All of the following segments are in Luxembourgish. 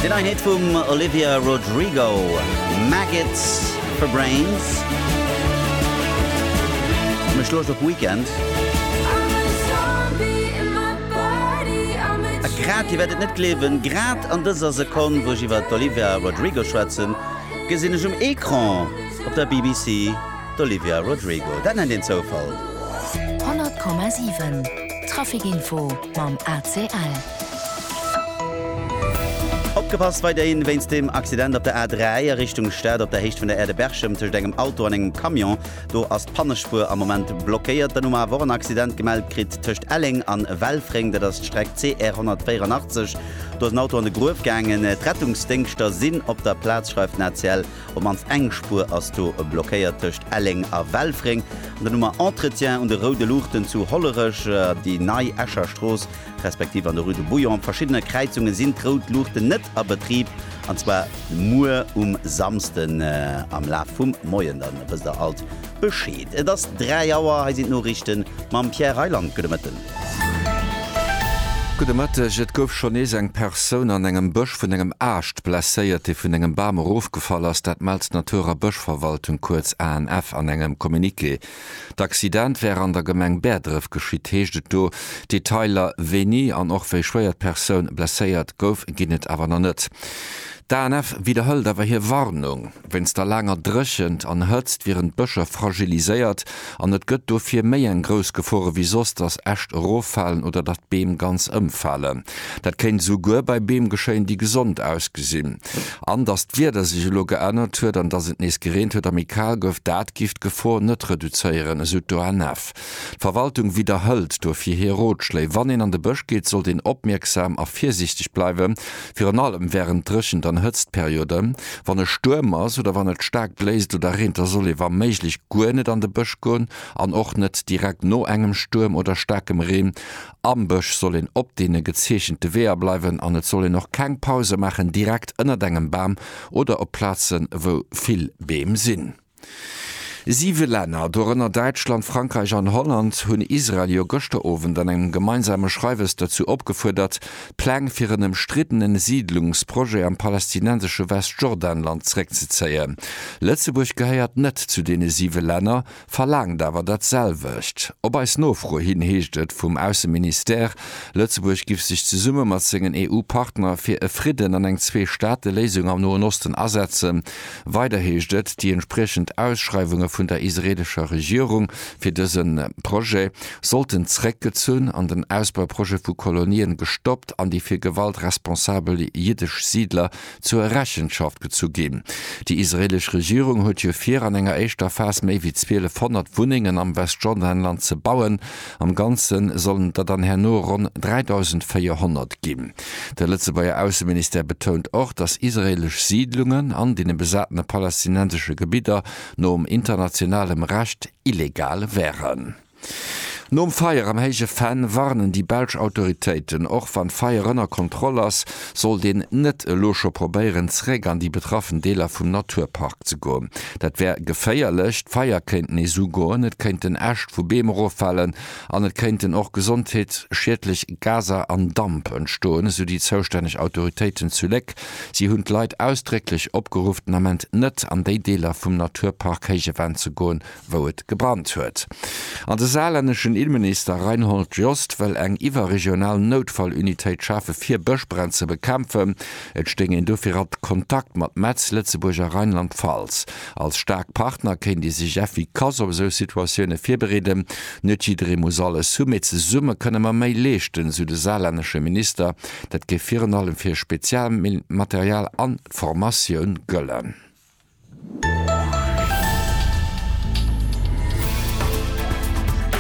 Déi nei Hit vum Olivia Rodrigo, Maggots for Brains. Mech loocht op Weekend. A grad, Dir wäert et net gleewen, grad an dëser Sekonn, wou ech iwwer d'Olivia Rodrigo schwätzen, gesinn ech um Ecran op der BBC d'Olivia Rodrigo. Dat nennt een Zoufall. 100,7 Trafic Info mam ACL. Opgepasst, weiderhin wéinst dem Accident op der A3 a Richtung Stad op der Héicht vun der Aire de Berchem tëscht engem Auto an engem Camion. Do ass d'Pannespuer am Moment blockéiert. Dann hu mer awer och en Accident gemellt kritt tëscht Elleng an Welfréng, dat ass d'Streck CR 184. Do ass en Auto an de Gruef gaangen. D'Rettungsdéngschter sinn op der Plaz, schreift den ACL. Op d'mannst eng Spuer ass do blockéiert tëscht Elleng a Welfréng. An dann hu mer Entretien un de roude Luuchten zu Hollerech, déi Nei Escher Strooss. respektiv an der Rue de Bouillon. Op verschiddene Kräizunge sinn d'Rout Luuchten net a Betrib, an zwar muer um Samsden am Laf vum Moien. Da wësst der alt Bescheed. Et ass 3 Auer, hei sinn d'Noriichte mam Pierre Reyland. Gudde Mëtten. Gudde Mëtteg. Et gouf schonn nees eng Persoun an engem Bësch vun engem Aascht blesséiert, dee vun engem Bam erofgefall ass. Dat mellt d'Natur a Bëschverwaltung, kuerz ANF, an engem Communiqué. D'Accident wär an der Gemeng Bäerdref geschitt, heescht et do. Detailer wéini an och wéi schwéier d'Persoun blesséiert gouf, ginn et awer nach net. D'ANF widderhëlt awer hir Warnung. Wéinst der laanger Dréchent an Hëtzt wieren d'Bëscher fragiliséiert an et gëtt dofir méi eng grouss Gefor ewéi soss, datt Äscht eroffalen oder datt Beem ganz ëmfalen. Dat kéint esouguer bei Beem geschéien, déi gesond ausgesinn. An datt d'Wieder sech elo geännert huet an datt et nees gereent huet a méi kal gouf, dat giff d'Gefor net reduzéieren, esou d'ONF. D'Verwaltung widderhëlt dofir hir Rotschléi. Wann een an de Bësch geet, sollt een opmierksam a virsiichteg bleiwen, virun allem wärend Dréchent an Hëtztperioden. Wann e Stuerm ass oder wann et staark bléist oder reent, da soll ee wa méiglech guer net an de Bësch goen an och net direkt no engem Stuerm oder staarkem Reen. Am Bësch soll een op deene gezeechente Weeër bleiwen an et soll een och keng Pause maachen direkt ënnert engem Bam oder op Plazen, wou vill Beem sinn. Siwe Länner, dorënner Däitschland, Frankräich an Holland, hunn Israel jo gëschter Owend an engem gemeinsame Schreiwes dozou opgefuerdert, d'Pläng fir en ëmstriddene Siidlungsprojet am palästinensesche Westjordanland zréckzezéien. Lëtzebuerg gehéiert net zu deene siwe Länner. verlaangt awer dat selwecht. Op eis Nofro hin heescht et vum Ausseministère, Lëtzebuerg giff sech zesumme mat sengen EU-Partner fir e Fridden an eng Zwee-Staate-Léisung am Noen Osten asetzen. Weider heescht et, déi entspriechend Ausschreiwunge vun der israeelescher Regierung fir dëse Projet sollten zréckgezunn an den Ausbauprojet vu Kolonien gestoppt an déi fir Gewalt responsabel jiddesch Siidler zur Rechenschaft gezu ginn. Déi israeelesch Regierung huet jo vir, an enger éischter Phas méi wéi 1200 Wunnengen am Westjordanland ze bauen. Am Ganze sollen et der dann herno ronn 3.400 ginn. De Lëtzebuerger Ausseministère betount och, datt israeelesch Siidlungen an deene besatene palästinensesche Gebidder nom internationalem Recht illegal wären. Nom Feier am Héije Venn warnen déi belsch Autoritéiten. Och wann d'Feier ënner Kontroll ass, sollt een net elo scho probéieren, zeréck an déi betraffen Deeler vum Naturpark ze goen. Dat wär geféierlech. D'Feier kéint nees ugoen, et kéinten Äscht vu Beem eroffalen an et kéinten och gesondheetsschiedlech Gaser an Damp entstoen, esou déi zoustänneg Autoritéiten zu Léck. Si hunn d'Leit ausdrécklech opgeruff, den Ament net an déi Deeler vum Naturpark Héije Venn ze goen, wou et gebrannt huet. An de saarlänneschen Innenminister Reinhold Jost wëll eng iwwerregional Noutfallunitéit schafe fir Bëschbränn ze bekämpfen. Et stéing een dofir a Kontakt mat Metz, Lëtzebuerg a Rheinland-Pfalz. Als staark Partner kéint ee sech effikass op esou Situatioune virbereeden. Net jidderee muss alles hu, mee zesumme kënne mer méi leeschten, sou de saarlännesche Minister. Dat géif virun allem fir Spezialmaterial a Formatioun gëllen.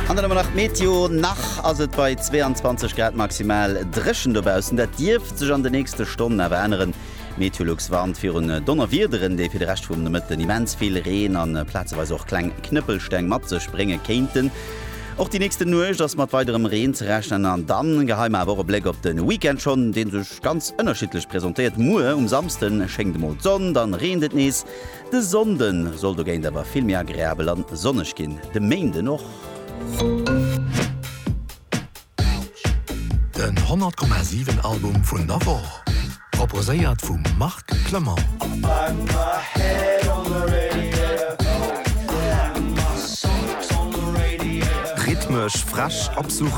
An dann ëmmer nach d'Meteo. Nach ass et bei 22 Grad maximal dréchen dobaussen. Dat dierft sech an de nächste Stonnen awer änneren. Meteolux warnt virun Donnerwiederen, déi fir de Rescht vum Nomëtten immens vill Reen a plazeweis och kleng Knëppelsteng mat sech brénge kéinten. Och déi nächste Nuecht ass mat weiderem Reen ze rechnen an dann geheim awer och e Bléck op de Weekend schonn, dee sech. Ganz ënnerschiddlech presentéiert. Muer um Samsden schéngt emol d'Sonn, dann reent et nees. De Sonnden soll dogéint awer vill méi agreabel an sonneg ginn, de Méinden och. Den 100,7 Album vun der Woch proposéiert vum Marc. Rhythmesch, frech, absurd,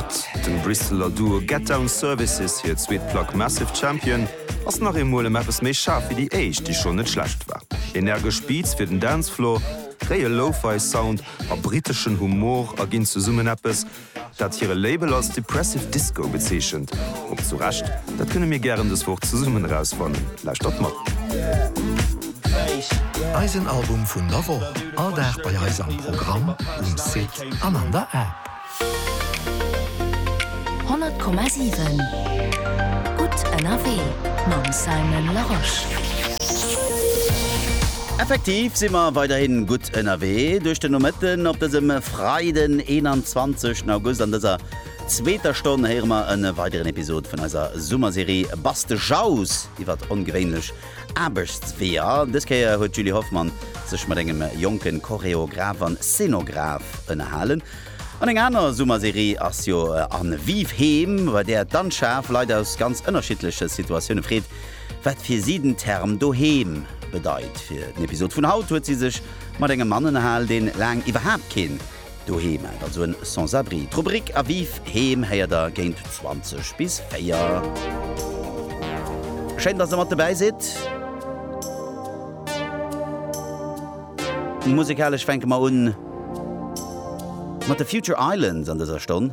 dem Bristeler Duo Get Down Services hir zweet Plack Massive Champion ass nach eemol ëm eppes méi schaarf wéi déi éischt, déi schonn net schlecht war. Energesch Beats fir den Dancefloor, réie Lo-Fi Sound a briteschen Humor erginn zesummen eppes, dat hire Label als Depressive Disco bezeechent, och zu Recht, dat kënne mir gären dës Woch zesummen erausfannen. Lauschtert mat. Eisen Album vun der Woch, all Dag bei eis am Programm, um Site an an der App. 100,7 Gutt ënnerwee mam Simon Larosche. Effektiv si mer weiderhin gutt ënnerwee duerch den Nomëtten op dësem. Freiden 21 August. An dëser zweeter Stonn héiere mer e weideren Episod vun eiser Summerserie Bass de Jau's iwwer ongewéinlech Aarbechtsweeër. Dës Kéier huet d'Julie Hoffmann sech mat engem jonken Choreograph an Szenograph ënnerhalen. An eng aner Summerserie ass jo an Vive Heem, bei där d'Anschaf Leit aus ganz ënnerschiddleche Situatioune freet, wat fir si den Term doheem bedeit. Fir den Episod vun haut huet si sech Mat engem Mann ënnerhalen, deen laang iwwerhaapt keen Doheem hat, also en Sans-abri. D'Rubrik Aviv Heem héiert der géint 20 bis 4. Schéin, dass der mat dobäi sidd. Musekalesch fänke mer un mat de Future Islands an dëser Stonn.